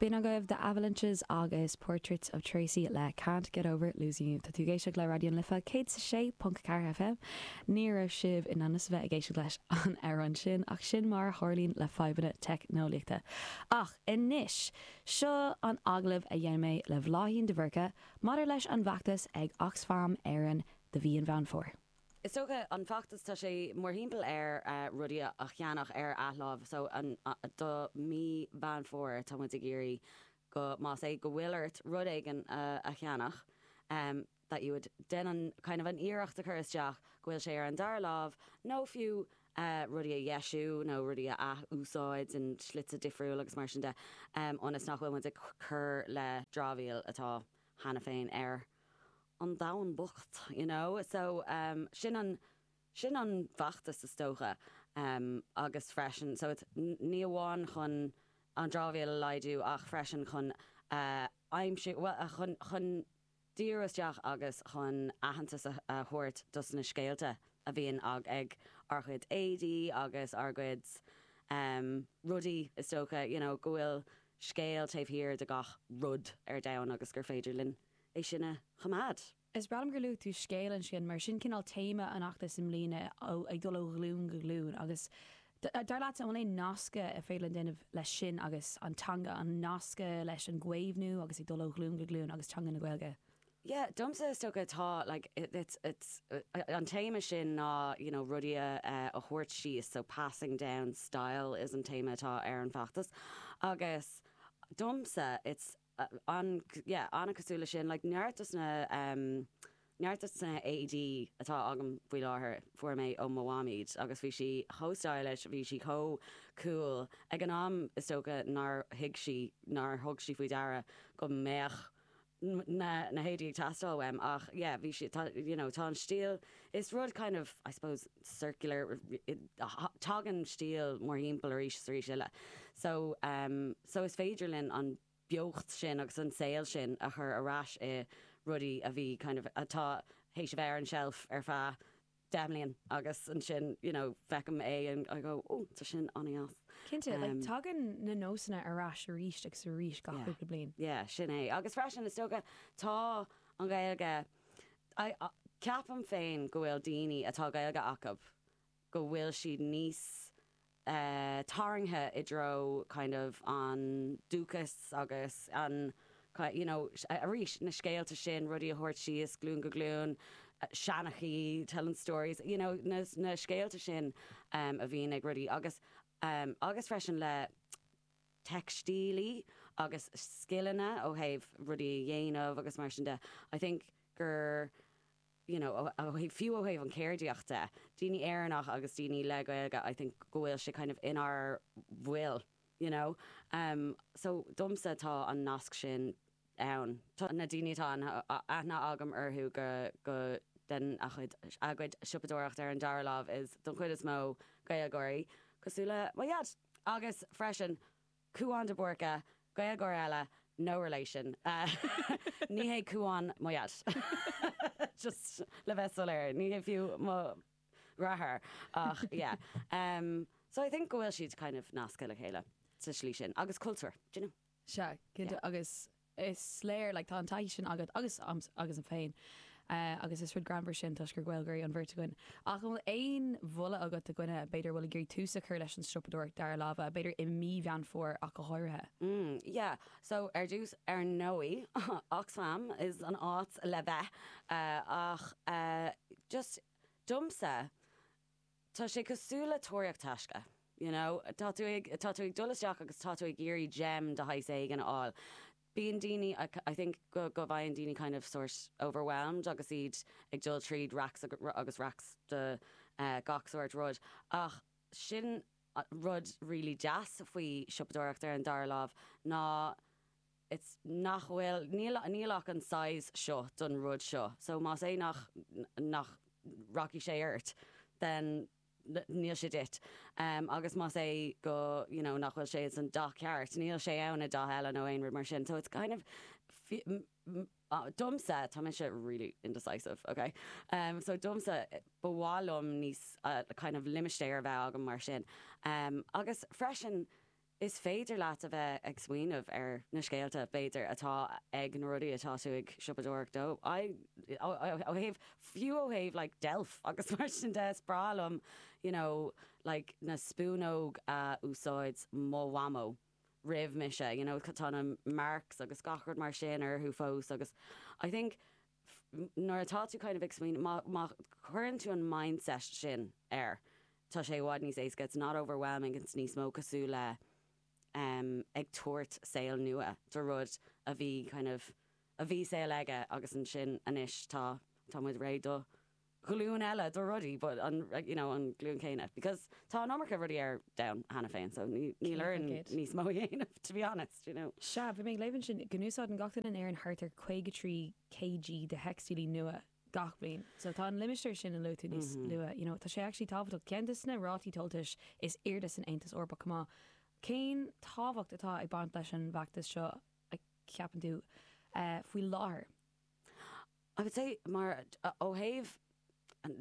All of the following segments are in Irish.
B'in agaibh The Avalanches agus Portraits of Tracey le Can't Get Over Losing You. Tá tú ag éisteacht le Raidió an Life 106.4 FM. Ní raibh sibh in ainm is a bheith ag éisteacht leis an amhrán sin ach sin mar a tharlaíonn le fadhbanna teicneolaíochta. Ach anois, seo an agallamh a dhein mé le Bláithín de Búrca maidir leis an bhfeachtas ag Oxfam Éireann do mhí Mheán Fómhair. Is dócha an feachtas tá sé mórthimpeall ar rudaí a cheannach ar athláimh so an do mhí Mheán Fómhair tá muid ag iarraidh go más é go bhfuil ort rud éigin a cheannach that you would déan an kind of an iarracht a chur isteach go bhfuil sé ar an dara láimh nó fiú rudaí a dheisiú nó rudaí a ath-úsáid in slite difriúil agus mar sin de ionas nach bhfuil muid ag cur le dramhaíl atá cheana féin ar an domhan bocht, you know. So, em, sin an, sin an feachtas is dócha. Em, agus freisin, so it, ní amháin chun an dramhaíl a laghdú ach freisin chun a aimsiú, bhuel, a, chun, chun díriú isteach agus chun aitheantas a, a thabhairt dos na scéalta a bhíonn ag, ag ár cuid éadaí agus ár cuid, em, rudaí is dócha, you know, go bhfuil scéal taobh thiar de gach rud ar domhan agus gur féidir linn é sin a choimeád. Is breá liom gur luaigh tú scéal ansin mar sin cineál téama an fheachtais i mbliana, ag dul ó ghlún go glún agus dar leatsa an bhfuil aon nascadh ab fhéidir linn déanamh leis sin agus an teanga, an nascadh leis an gcaomhnú agus ag dul ó ghlún go glún agus teanga na Gaeilge? Yeah, domsa is dócha tá like it it's it's an téama sin ná you know rudaí a a thabhairt síos so passing down style is an téama atá ar an bhfeachtas agus domsa it's an yeah an-chosúil leis sin like neart dos na em neart dos na héadaí atá agam faoi láthair fuair mé ó mo mham iad agus bhí sí chomh stylish, bhí sí chomh cool ag an am is dócha nár thuig sí nár thug sí faoi deara go mbeadh na na héadaí ag teastáil uaim ach yeah bhí siad tá you know tá an stíl is rud kind of I suppose circular tagann stíl mórthimpeall arís is arís eile so um so is féidir linn an beocht sin agus an saol sin a chur ar ais i rudaí a bhí kind of atá théis a bheith ar an tseilf ar feadh deich mbliain agus ansin you know feicim é and I go oh tá sin an-deas. Cinnte, like tagann na nósanna ar ais arís agus arís gach cúpla bliain. Yeah, sin é. Agus freisin is dócha tá an Ghaeilge, ceapaim féin go bhfuil daoine atá Gaeilge acu go bhfuil siad níos. é tarraingthe i dtreo kind of an dúchas agus an you know arís na scéalta sin, rudaí a thabhairt síos glún go glún, seanchaí, telling stories, you know na na scéalta sin em a bhíonn ag rudaí agus em agus freisin le teicstílí agus scileanna ó thaobh rudaí a dhéanamh agus mar sin de. I think gur. you know fiú ó thaobh an chéardaíocht de, daoine Éireannach agus daoine le Gaeilge I think go bhfuil sé kind of inár bhfuil you know em so domsa tá an nasc sin ann. Tá na daoine atá aithne agam orthu go go den a chuid a gcuid siopadóireacht ar an dara lámh is don chuid is mó Gaeilgeoirí cosúil le mo dheaid agus freisin Cúán de Búrca, Gaeilgeoir eile, no relation, ní hé Cúán mo dheaid, just le bheith soiléir, ní hé fiú mo dheartháir ach yeah. So I think go bhfuil siad kind of nasctha le chéile sa slí sin agus cultúr, d'you know. Sea, cinnte agus. Is léir, like, tá an taithí sin agat agus agamsa féin agus is rud greannmhar sin toisc gur Gaeilgeoirí an bheirt againn. Ach an bhfuil aon mholadh agat do dhuine, b'fhéidir, a bhfuil ag iarraidh tús a chur leis an siopadóireacht dara láimhe, b'fhéidir i mí Mheán Fómhair ach go háirithe? Mm, yeah. So, ar dtús, ar ndóigh, Oxfam is an áit le bheith. Ach just, domsa, Tá sé cosúil le tóraíocht taisce, you know, tá tú ag, tá tú ag dul isteach agus tá tú ag iarraidh gem de shaghas éigin a fháil. Bíonn daoine, I think go, go bhfaigheann daoine kind of sórt overwhelmed agus iad ag dul tríd racks agus racks de gach sórt rud ach sin rud really deas faoi siopadóireacht ar an dara lámh ná it's nach bhfuil níl níl ach an size seo don rud seo so más é nach nach rachaidh sé ort then níl sé duit em agus más é go you know nach bhfuil sé ins an dath ceart níl sé ann i dath eile nó aon rud mar sin so it's kind of fi ah domsa tá mise really indecisive okay em so domsa ba mhaith liom níos a kind of limistéar a bheith agam mar sin em agus freisin Is féidir leat a bheith ag smaoineamh ar na scéalta, b'fhéidir, atá ag na rudaí atá tú ag siopadóireacht dó. I, ó thaobh, fiú ó thaobh like deilf agus mar sin de, is breá liom you know like na spúnóg a úsáid mo mhamó roimh mise you know tá na marks agus gach rud mar sin orthu fós agus I think nuair atá tú kind of ag smaoineamh, má, má chuireann tú an mindset sin air, tá sé i bhfad níos éasca, it's not overwhelming, it's níos mó cosúil le em ag tabhairt saol nua do rud a bhí kind of, a bhí saol aige agus ansin anois tá, tá muid réidh dó. ghlúin eile de rudaí but an you know an ghlúin chéanna because tá an iomarca rudaí ar domhan cheana féin so níl orainn níos mó a dhéanamh to be honest you know. Sea, bhí mé ag léamh ansin go n-úsáideann gach duine in Éirinn thart ar 53 kg de theicstílí nua gach bliain so tá an limistéar sin a luaigh tú níos luaithe you know tá sé actually tábhachtach. Ceann de na rátaí tomhaltais is airde san Aontas Eorpach chomh maith. Cén tábhacht atá ag baint leis an bhfeachtas seo a cheapann tú faoi láthair? I would say mar ó thaobh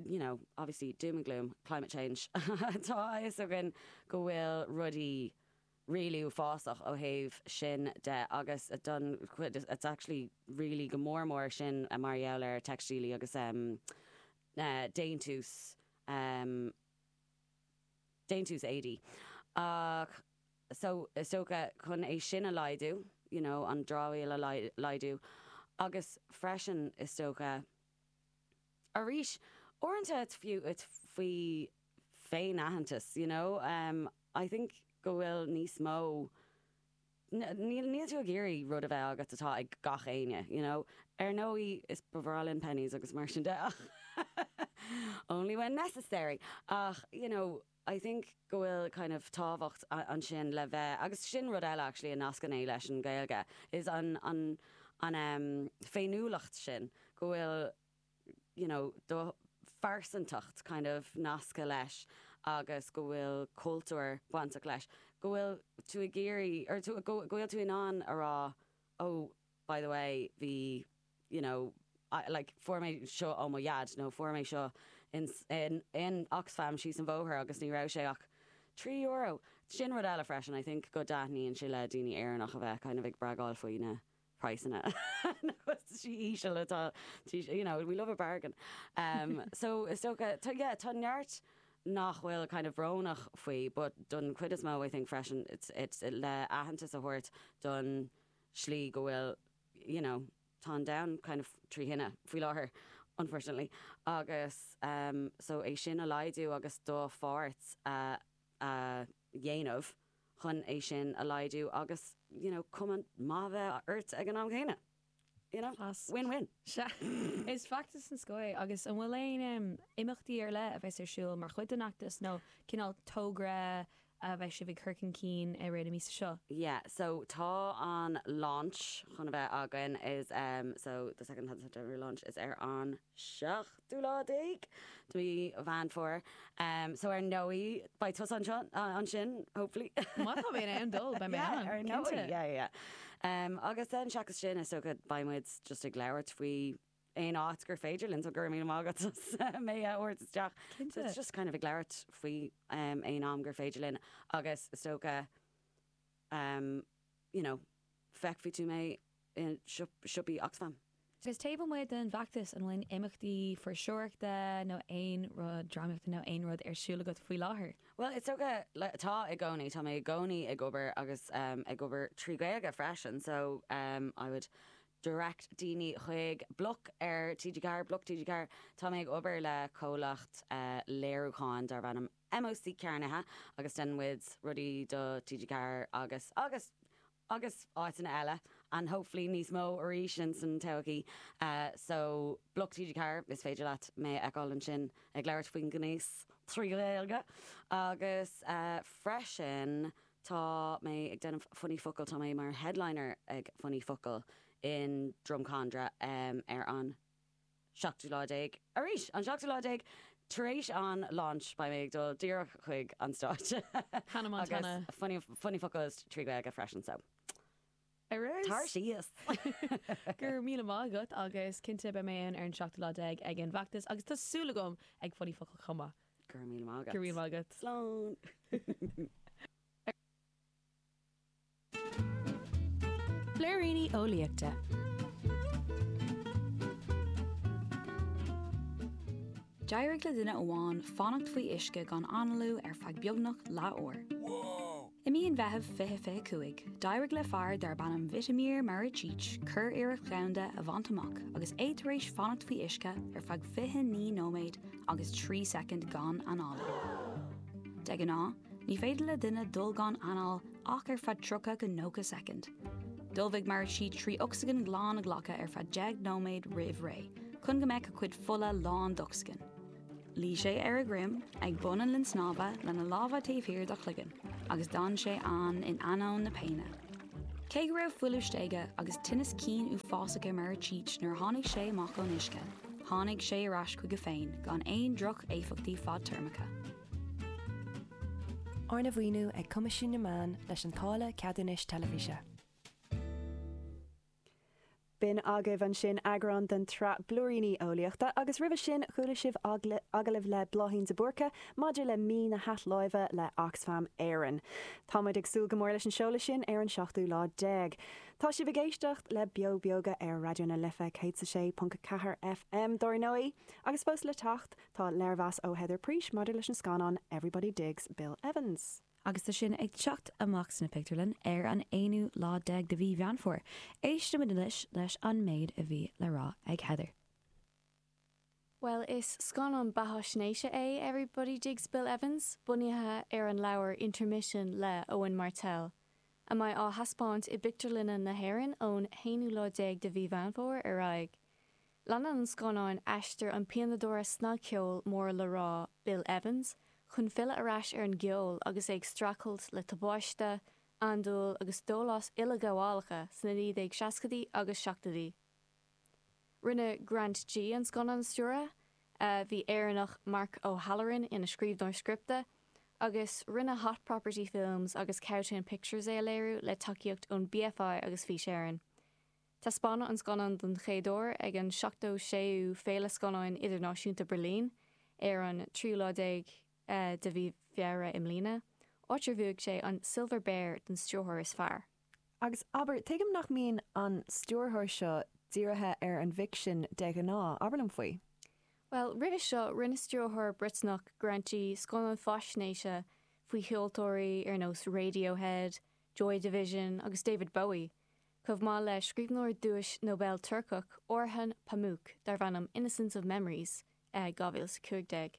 you know obviously doom and gloom climate change tá a fhios againn go bhfuil rudaí really uafásach ó thaobh sin de agus don chuid it's actually really go mór mór sin mar gheall ar theicstílí agus déantús um déantús éadaí. Ach so, is dócha, chun é sin a laghdú, you know, an dramhaíl a laghdú. Agus freisin, is dócha, arís, uaireanta it's fiú, it's faoi féin-aitheantas, you know. I think go bhfuil níos mó Níl tú ag iarraidh rud a bheith agat atá ag gach éinne, you know. Ar ndóigh is ba bhreá linn Penneys agus mar sin de ach only when necessary. Ach, you know, I think go bhfuil kind of tábhacht ansin le bheith, agus sin rud eile actually a nascann é leis an Ghaeilge is an an an em féiniúlacht sin go bhfuil, you know, do phearsantacht kind of nasctha leis agus go bhfuil cultúr bainteach leis, go bhfuil tú ag iarraidh, go bhfuil tú in ann a rá, oh, by the way, bhí, you know, like, fuair mé seo ó mo dhaid nó fuair mé seo in, in, in Oxfam síos an bhóthar agus ní raibh sé ach trí euro. Sin rud eile freisin, I think, go dtaitníonn sé le daoine Éireannach a bheith kind of ag bragáil faoi na, praghsanna na costaisí íseal atá, tá, you know we love a bargain um so is dócha tá yeah tá neart nach bhfuil kind of brónach faoi but don chuid is mó I think freisin it's it's le aitheantas a thabhairt don slí go bhfuil you know tá an domhan kind of trí thine faoi láthair unfortunately agus um so é sin a laghdú agus do pháirt a a dhéanamh chun é sin a laghdú agus you know cuma maith a bheith ort ag an am chéanna. You know? Class. Win win. Sea. Is feachtas den scoth é agus an bhfuil aon em imeachtaí ar leith a bheas ar siúl mar chuid den fheachtas nó cineál togra a bheas sibh ag cur chun cinn i rith na míosa seo? Yeah so tá an launch chun a bheith againn is em so the second September launch is ar an seachtú lá déag de mhí Mheán Fómhair so ar ndóigh beidh tusa ansin hopefully. Má tá mé in ann dul beidh mé ann. Ar ndóigh yeah yeah agus then seachas sin is dócha beidh muid just ag labhairt faoi aon áit gur féidir linn so go raibh míle maith agat as mé a thabhairt isteach. Cinnte. It's just kind of ag labhairt faoi aon am gur féidir linn agus is dócha em you know feicfidh tú mé i siopaí Oxfam. Agus taobh amuigh den bhfeachtas, an bhfuil imeachtaí fuirseoireachta nó aon rud, drámaíochta nó aon rud ar siúl agat faoi láthair? Bhuel is dócha, tá i gcónaí, tá mé i gcónaí ag obair agus em ag obair trí Ghaeilge freisin so em I would direct daoine chuig bloc ar TG4, bloc TG4, tá mé ag obair le comhlacht eh léiriúcháin darb ainm, MOC Carnaithe agus deineann muid rudaí do TG Ceathair agus agus agus áiteanna eile and hopefully níos mó arís ins an todhchaí so bloc TG Ceathair is féidir leat mé a fheiceáil ansin ag labhairt faoin ngnéas trí Ghaeilge agus freisin tá mé ag déanamh Funny Focal tá mé mar headliner ag Funny Focal in Drumcondra ar an seachtú lá déag. Arís, an seachtú lá déag tar éis an launch beidh mé ag dul díreach chuig an stáitse Hannah Montana. Agus Funny Focal trí Gaeilge freisin so Ar ais. tar síos! Go raibh míle maith agat agus cinnte beidh mé ann ar an seachtú lá déag ag an bhfeachtas agus tá súil agam ag Funny Focal chomh maith. Go raibh míle maith agat. Go raibh míle maith agat. Slán! Blúiríní Eolaíochta. D'éirigh le duine amháin fanacht faoi uisce gan análú ar feadh beagnach leathuair. I mí an Mheithimh 2025, d'éirigh le fear darb ainm Vitomir Maricic curiarracht dhomhanda a bhaint amach agus é tar éis fanacht faoi uisce ar feadh 29 nóiméad agus 3 soicind gan análú. De ghnáth, Ní féidir le duine dul gan anáil ach ar feadh 30-90 soicind. D'ullmhaigh Maricic trí ocsaigin ghlan a ghlacadh ar feadh deich nóiméad roimh ré chun go mbeadh a cuid fola lán d'ocsaigin. Luigh sé ar a dhroim ag bun an linn snámha lena lámha taobh thiar dá chloigeann agus d'fhan sé ann in ainneoin na péine. Cé go raibh fuiliú istigh agus tinneas cinn uafásach ar Maricic nuair a tháinig sé amach ón uisce, tháinig sé ar ais chuige féin gan aon droch-éifeachtaí fadtéarmacha. Arna mhaoiniú ag Coimisiún na Meán leis an Táille Ceadúnais Teilifíse. B'in agaibh ansin eagrán den tsraith Blúiríní Eolaíochta agus roimhe sin chuala sibh agallamh le Bláithín de Búrca maidir le Mí na hAthláimhe le Oxfam Éireann. Tá muid ag súil go mór leis an seoladh sin ar an seachtú lá déag. Tá sibh ag éisteacht le Beo Beoga ar Raidió na Life 106.4 FM dar ndóigh, agus fós le teacht, Tá léirmheas ó Heather Preece maidir leis an scannán Everybody Digs Bill Evans. Agus tá sin ag teacht amach sna pictiúrlann ar an 11ú lá de mhí Mheán Fómhair, éistimid anois leis an méid a bhí le rá ag Heather. Bhuel, is scannán beathaisnéise é Everybody Digs Bill Evans, bunaithe ar an leabhar Intermission le Owen Martell, a mbeidh á thaispeáint i bpictiúrlanna na hÉireann ón 11ú lá de mhí Mheán Fómhair ar aghaidh. Leanann an scannán aistear an pianadóra snagcheoil mór le rá Bill Evans chun filleadh ar ais ar an gceol agus é ag streachailt le tubáiste, andúil agus dólás uileghabhálacha sna 1960idí agus 70idí. Rinne Grant Gee an scannán a stiúradh, bhí Éireannach Mark O Halloran ina scríbhneoir scripte, agus rinne Hot Property Films agus Cowtown Pictures é a léiriú le tacaíocht ón BFI agus Fís Éireann. Taispeánadh an scannán don chéad uair ag an 76ú Féile Scannáin Idirnáisiúnta Berlin ar an tríú lá déag de mhí Feabhra i mbliana, áit ar bhuaigh sé an Silver Bear don stiúrthóir is fearr. Agus, abair, tuigim nach mbíonn an stiúrthóir seo dírithe ar an bhficsean de ghnáth. Abair liom faoi. Bhuel, roimhe seo, rinne stiúrthóir Briotanach, Grant Gee, scannán faisnéise faoi cheoltóirí ar nós Radiohead, Joy Division agus David Bowie. chomh maith le scríbhneoir duais Nobel Turcach, Orhan Pamuk, darb ainm Innocence of Memories, 2015.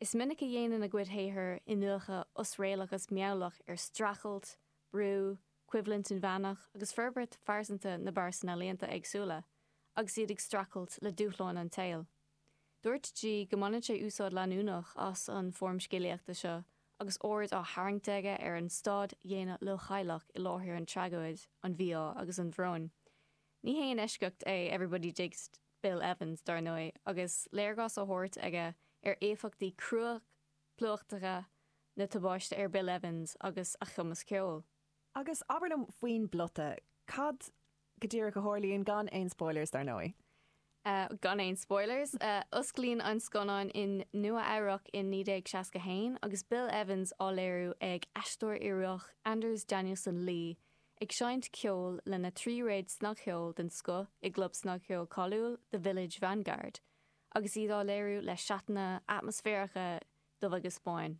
Is minic a dhéanann a gcuid shaothar iniúchadh osréalach agus meabhlach ar streachailt, brú, coimhlint inmheánach agus forbairt phearsanta na bpearsan ealaíonta éagsúla agus iad ag streachailt le dúshláin an tsaoil. Dúirt Gee go mbaineann sé úsáid leanúnach as an foirm scéalaíochta seo agus aird á tharraingt aige ar an staid dhaonna leochaileach i láthair an tragóid, an mhí-ádh agus an bhróin. Ní haon eisceacht é Everybody Digs Bill Evans, dar ndóigh, agus léargas á thabhairt aige ar éifeachtaí craplaitheacha na tubaiste ar Bill Evans agus a chumas ceoil. Agus abair liom faoin bplota. Cad go díreach a tharlaíonn, gan aon spoilers dar ndóigh? Gan aon spoilers. Osclaíonn an scannán in Nua Eabhrac in 1961 agus Bill Evans á léiriú ag aisteoir Ioruach Anders Danielsen Lie ag seinnt ceoil lena thríréad snagcheoil den scoth i gclub snagcheoil cáiliúil The Village Vanguard agus iad á léiriú le seatanna atmaisféaracha dubh-agus-bán.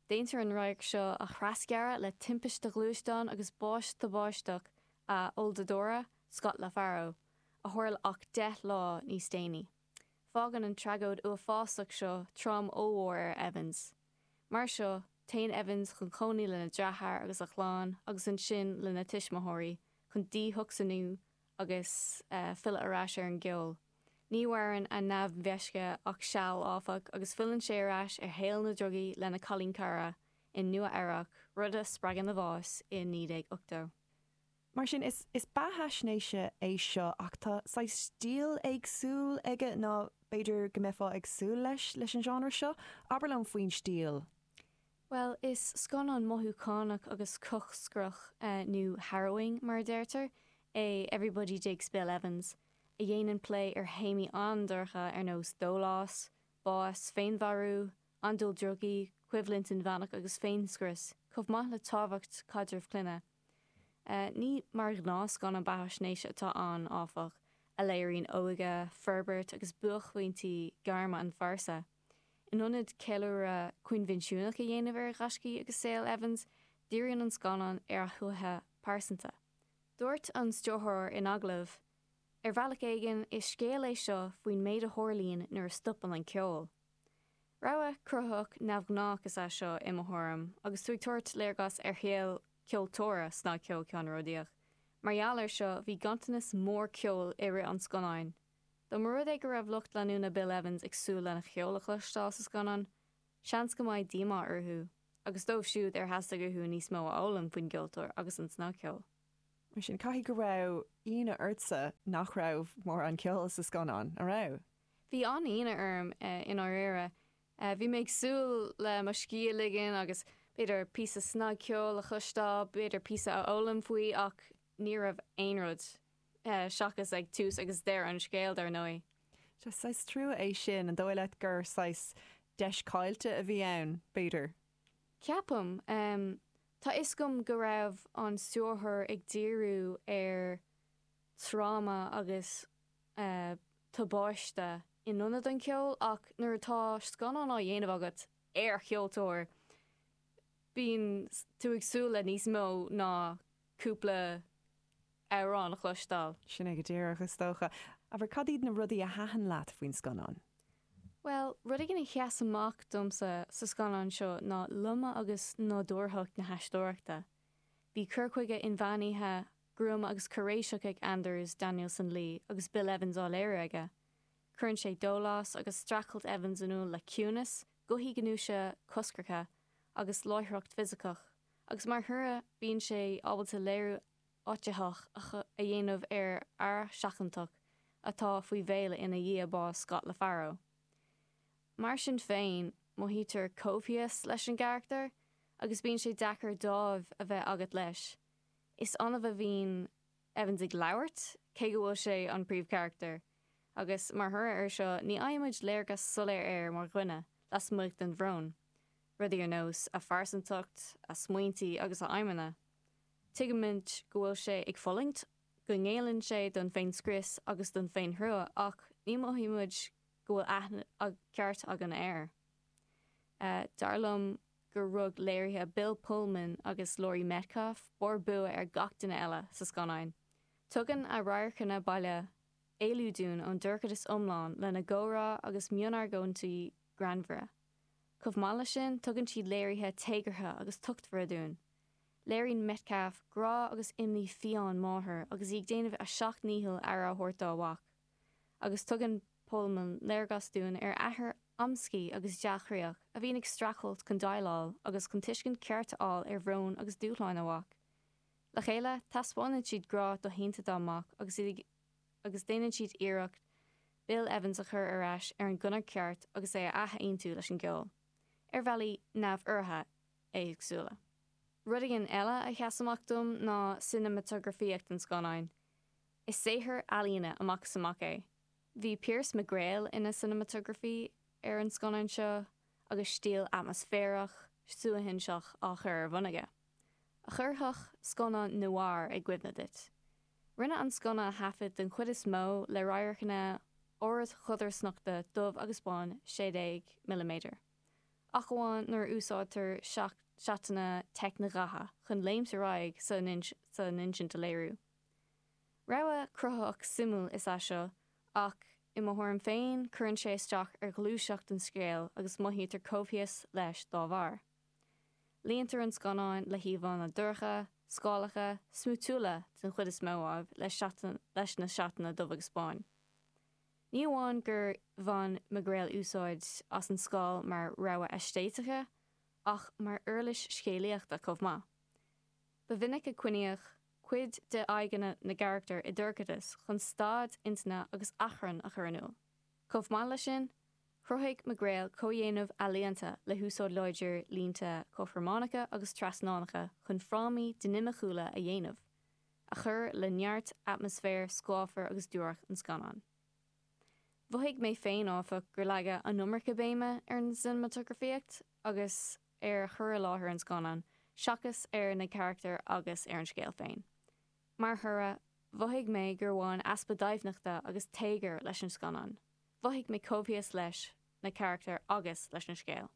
Déantar an radharc seo a threasghearradh le timpiste ghluaisteáin agus bás tubaisteach a olldordadóra, Scott LaFaro, a tharla ach deich lá níos déanaí. Fágann an tragóid uafásach seo tráma ollmhór ar Evans. Mar seo, téann Evans chun cónaí lena dheartháir agus a chlann agus ansin lena tuismitheoirí chun díthocsainiú agus filleadh ar ais ar an gceol. Ní mhaireann a neamh-mheisce ach seal, áfach, agus filleann sé ar ais ar shaol na ndrugaí lena chailín cara in Nua Eabhrac, rud a spreagann a bhás i 1980. Mar sin, is beathaisnéis é seo, ach tá saghas stíl éagsúil aige ná b'fhéidir go mbeifeá ag súil leis leis an genre seo. Abair linn faoin stíl. Bhuel, is scannán mothúchánach agus coscrach, nó harrowing mar a deirtear, é Everybody Digs Bill Evans, a dhéanann plé ar théamaí an-dorcha ar nós dólás, bás, féinmharú, andúil drugaí, coimhlint inmheánach agus féinscrios, chomh maith le tábhacht caidreamh clainne. Ní mar ghnáthscannán beathaisnéise atá ann, áfach, a léiríonn óige, forbairt agus buaicphointí gairme an phearsa. In ionad ceiliúradh coinbhinsiúnach a dhéanamh ar ghaiscí agus saol Evans, díríonn an scannán ar a shuaitheadh pearsanta. Dúirt an stiúrthóir in agallamh, Ar bhealach éigin, is scéal é seo faoin méid a tharlaíonn nuair a stopann an ceol. Rogha cruthaitheach neamhghnách is ea seo, i mo thuairim, agus tú ag tabhairt léargas ar shaol ceoltóra snagcheoil ceannródaíoch. Mar gheall air seo, bhí ganntanas mór ceoil i rith an scannáin. Dá mba rud é go raibh lucht leanúna Bill Evans ag súil lena cheol a chloisteáil sa scannán, seans go mbeidh díomá orthu, agus dóibh siúd ar theastaigh uathu níos mó a fhoghlaim faoin gceoltóir agus an snagcheol. Mar sin, caithfidh go raibh ionadh ortsa nach raibh mórán ceoil sa scannán, an raibh? Bhí an-ionadh orm, i ndáiríre. Bhí mé ag súil le mo scíth a ligean agus, b'fhéidir, píosa snagcheoil a chloisteáil, b'fhéidir píosa a fhoghlaim faoi, ach ní raibh aon rud. seachas ag tús agus deireadh an scéil, dar ndóigh. Sea, saghas trua é sin. An dóigh leat gur saghas deis caillte a bhí ann, b'fhéidir? Ceapaim. Tá 'fhios agam go raibh an stiúrthóir ag díriú ar thráma agus tubáiste in ionad an cheoil ach nuair atá scannán á dhéanamh agat ar cheoltóir, bíonn tú ag súil le níos mó ná cúpla amhrán a chloisteáil. Sin é go díreach, is dócha. Abair, cad iad na rudaí a thaitin leat faoin scannán? Bhuel, rud éigin a sheas amach domsa sa scannán seo ná loime agus nádúrthacht na haisteoireachta. Bhí cur chuige inmheánaithe, gruama agus cairéiseach ag Anders Danielsen Lie, agus Bill Evans á léiriú aige. Cuireann sé dólás agus streachailt Evans in iúl le ciúnas, gothaí gnúise coscracha, agus láithreacht fisiceach, agus mar thoradh bíonn sé ábalta léiriú a áititheach a dhéanamh ar fhear seachantach atá faoi mhéala ina dhiaidh bás Scott LaFaro. Mar sin féin, mothaítear coimhthíos leis an gcarachtar agus bíonn sé deacair dáimh a bheith agat leis. Is annamh a bhíonn Evans ag labhairt, cé go bhfuil sé an príomhcharachtar, agus mar thoradh ar seo ní fhaighimid léargas soiléir air mar dhuine lasmuigh den bhrón, rudaí ar nós a phearsantacht, a smaointí agus a aidhmeanna. Tuigimid go bhfuil sé ag fulaingt, go ngéilleann sé don féin-scrios agus don féin-thrua ach ní mhothaíonn muid go bhfuil aithne ceart againn air. Dar liom gur rug léirithe Bill Pullman agus Laurie Metcalf barr bua ar gach duine eile sa scannán. Tugann a radharcanna baile éalú dúinn ón dorchadas iomlán lena gcomhrá agus mionargóintí greannmhara. Chomh maith leis sin, tugann siad léirithe téagartha agus tochtmhara dúinn. Léiríonn Metcalf grá agus imní fiáin máthar agus í ag déanamh a seacht ndícheall aire a thabhairt dá mhac. Agus tugann Pullman léargas dúinn ar athair amscaí agus dea-chroíoch a bhíonn ag streachailt chun déileáil agus chun tuiscint cheart a fháil ar bhrón agus dúshláin a mhac. Le chéile, taispeánann siad grá doshéanta dá mac agus iad ag agus déanann siad iarracht Bill Evans a chur ar ais ar an gconair cheart agus é a ath-aontú leis an gceol, ar bhealaí neamhairithe. éagsúla. Rud éigin eile a sheas amach dom ná cineamatagrafaíocht an scannáin. Is saothar ealaíne amach is amach é. Bhí Piers McGrail ina cineamatagrafaí ar an scannán seo agus stíl atmaisféarach, suaithinseach á chur ar bhun aige, a chuirfeadh scannán noir i gcuimhne duit. Rinneadh an scannán a thaifead den chuid is mó le radharcanna ardchodarsnachta dubh agus bán 16 milliméadar. ach amháin nuair a úsáidtear seatanna teicnidhaite chun léimt ar aghaidh sa insint a léiriú. Rogha cruthaitheach suimiúil is ea seo ach, i mo thuairim féin, cuireann sé isteach ar ghluaiseacht an scéil agus mothaítear coimhthíos leis dá bharr. Líontar an scannán le híomhánna dorcha, scáileacha, smúitiúla, den chuid is mó, ámh, leis na seatanna dubh-agus-bán. Ní amháin gur bhain McGreill úsáid as an scáil mar rogha aeistéitice ach mar uirlis scéalaíochta chomh maith. Ba mhinic a coinníodh cuid d'aghaidheanna na gcarachtar i dorchadas chun staid intinne agus achrann a chur in iúl. Chomh maith leis sin, chruthaigh McGreill comhdhéanamh ealaíonta le húsáid láidir línte cothrománacha agus trasnánacha chun frámaí dinimiciúla a dhéanamh. a chuir le neart atmaisféar scáfar agus duairc an scannáin. Mhothaigh mé féin, áfach, gur leagadh an iomarca béime ar an cineamatagrafaíocht agus ar chur i láthair an scannáin seachas ar na carachtair agus ar an scéal féin. Mar thoradh, mhothaigh mé gur bhain easpa doimhneachta agus téagair leis an scannán. Mhothaigh mé coimhthíos leis na carachtair agus leis an scéal.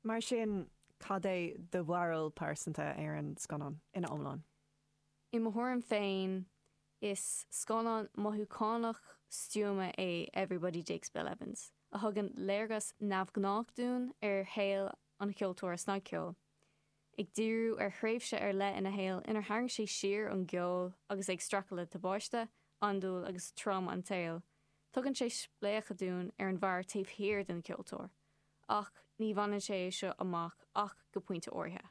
Mar sin, cad é do bharúil pearsanta ar an scannán ina iomlán? I mo thuairim féin, is scannán mothúchánach stuama é Everybody Digs Bill Evans, a thugann léargas neamhghnách dúinn ar shaol an cheoltóra snagcheoil. ag díriú ar thréimhse ar leith ina shaol inar tharraing sé siar ón gceol agus é ag streachailt le tubáiste, andúil agus tráma an tsaoil, tugann sé spléachadh dúinn ar an bhfear taobh thiar den cheoltóir, ach ní bhaineann sé é seo amach ach go pointe áirithe.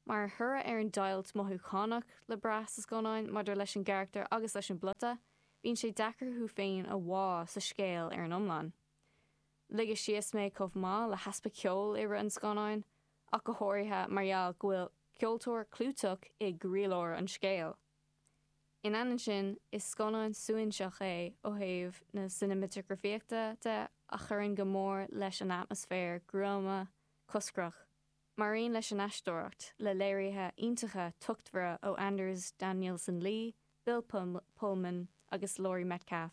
Mar thoradh ar an deighilt mothúchánach le brath sa scannán maidir leis an gcarachtar agus leis an bplota, bíonn sé deacair thú féin a bhá sa scéal ar an iomlán. Ligeadh síos mé chomh maith le heaspa ceoil i rith an scannáin, ach go háirithe mar gheall go bhfuil ceoltóir clúiteach i gcroílár an scéil. In ainneoin sin, is scannán suaithinseach é ó thaobh na cineamatagrafaíochta de a chuireann go mór leis an atmaisféar gruama coscrach, mar aon leis an aisteoireacht, le léirithe iontacha tochtmhara ó Anders Danielsen-Lie, Bill Pullman agus Laurie Metcalf,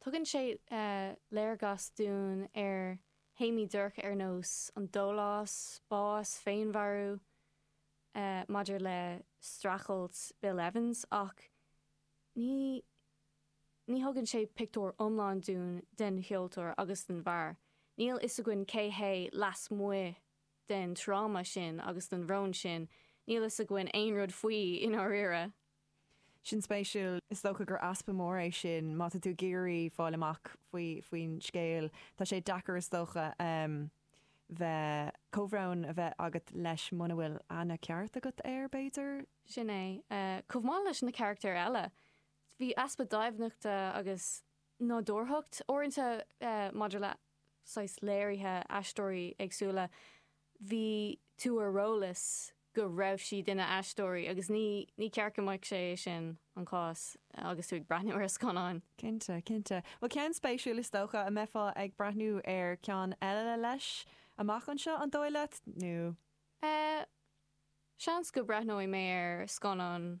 Tugann sé léargas dúinn ar théamaí dorcha ar nós an dólás, bás, féinmharú, maidir le streachailt Bill Evans ach ní ní thugann sé pictiúr iomlán dúinn den cheoltóir agus den bhfear. Níl fhios againn cé hé lasmuigh den tráma sin agus den bhrón sin, níl fhios againn aon rud faoi i ndáiríre. Sin spéisiúil. Is dócha gur easpa mór é sin má tá tú ag iarraidh fáil amach faoi faoin scéal. Tá sé deacair is dócha bheith comhbhrón a bheith agat leis muna bhfuil aithne ceart agat air, b'fhéidir? Sin é. Chomh maith leis na carachtair eile, bhí easpa doimhneachta agus nádúrthacht. Uaireanta, maidir le saghas léirithe aisteoirí éagsúla, bhí tú ar eolas go raibh siad ina aisteoirí agus ní ceart go mbeadh sé sin an cás agus tú ag breathnú ar scannán. Cinnte, cinnte. Bhuel, ceann spéisiúil is dócha, an mbeifeá ag breathnú ar ceann eile leis amach anseo, an dóigh leat, nó? Eh, seans go breathnóidh mé ar scannán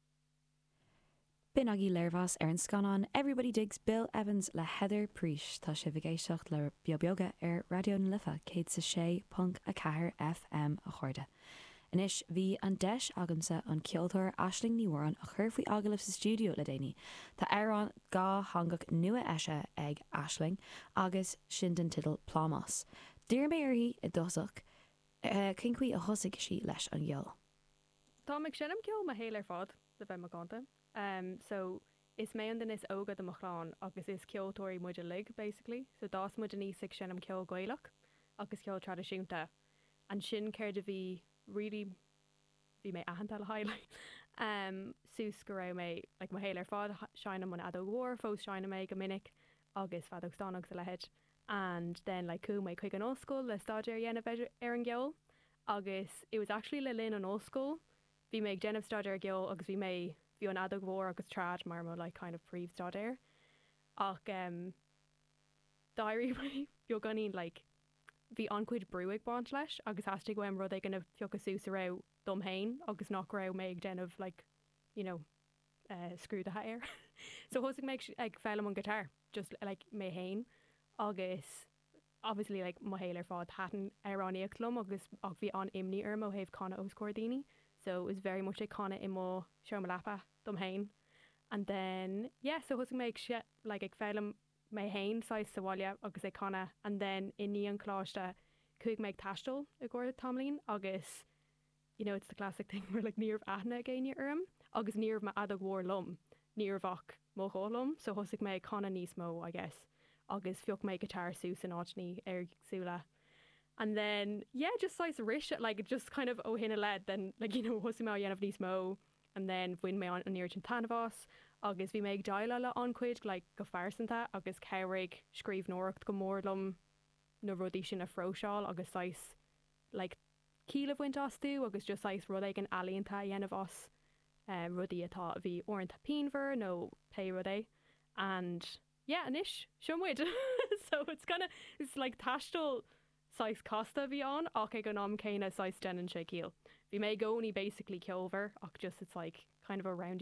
B'in agaibh léirmheas ar an scannán Everybody Digs Bill Evans le Heather Preach. Tá sibh ag éisteacht le Beo Beoga ar Raidió na Life 106.4 FM, a chairde. Anois, bhí an deis agamsa an ceoltóir Aisling Ní hÓráin a chur faoi agallamh sa stiúideo le déanaí. Tá amhrán dátheangach nua eisithe ag Aisling agus sin don teideal Plámás. D'iarr mé uirthi i dtosach cén chaoi a thosaigh sí leis an gceol. Táim ag seinm ceoil mo shaol ar fad, le bheith macánta. So, is mé an duine is óga de mo chlann agus is ceoltóirí muid uilig, basically. So, d'fhás muid aníos ag seinm ceol Gaelach agus ceol traidisiúnta. Ansin, céard a bhí really, bhí mé aitheanta le highlight. Suas go raibh mé, like mo shaol ar fad, seinnim an fheadóg mhór, fós seinnim í go minic, agus feadóg stáin agus a leithéid. And then, like chuaigh mé chuig an ollscoil le staidéar a dhéanamh ar an gceol. agus it was actually le linn an ollscoil bhí mé ag déanamh staidéar ar cheol agus bhí mé bhí an fheadóg mhór agus trad mar mo like kind of príomhstaidéar ach em d'éirigh mé beagáinín like bhí an-chuid brú ag baint leis agus theastaigh uaim rud éigin a phiocadh suas a raibh dom féin agus nach raibh mé ag déanamh like you know eh scrúdaithe air so thosaigh mé ag foghlaim an guitar just like mé féin agus Obviously, like, mo shaol ar fad, thaitin amhránaíocht liom agus, ach bhí an-imní orm ó thaobh canadh os comhair daoine. So, it was very much ag canadh i mo sheomra leapa dom fhéin. And then, yeah, so thosaigh mé ag, like, ag foghlaim mé fhéin, saghas, sa bhaile agus ag canadh. And then, i ndiaidh an choláiste, chuaigh mé ag taisteal i gcomhair tamaillín agus, you know it's the classic thing where like ní raibh aithne ag éinne orm agus ní raibh m'fheadóg mhór liom ní raibh ach mo ghuth liom so thosaigh mé ag canadh níos mó I guess agus phioc mé guitar suas in áiteanna éagsúla and then yeah just saghas arís like just kind of ó shin i leith then like you know thosaigh mé á dhéanamh níos mó and then bhain mé an oiread sin taitneamh as agus bhí mé ag déileáil le an-chuid like go phearsanta agus chabhraigh scríbhneoireacht go mór liom na rudaí sin a phróiseáil agus saghas like ciall a bhaint astu agus just saghas rud éigin ealaíonta a dhéanamh as rudaí atá, a bhí uaireanta pianmhar nó pé rud é and yeah anois seo muid so it's kinda, it's like taisteal saghas casta a bhí ann ach ag an am céanna saghas deineann sé ciall. Bhí mé i gcónaí basically ceolmhar ach just it's like kind of a roundy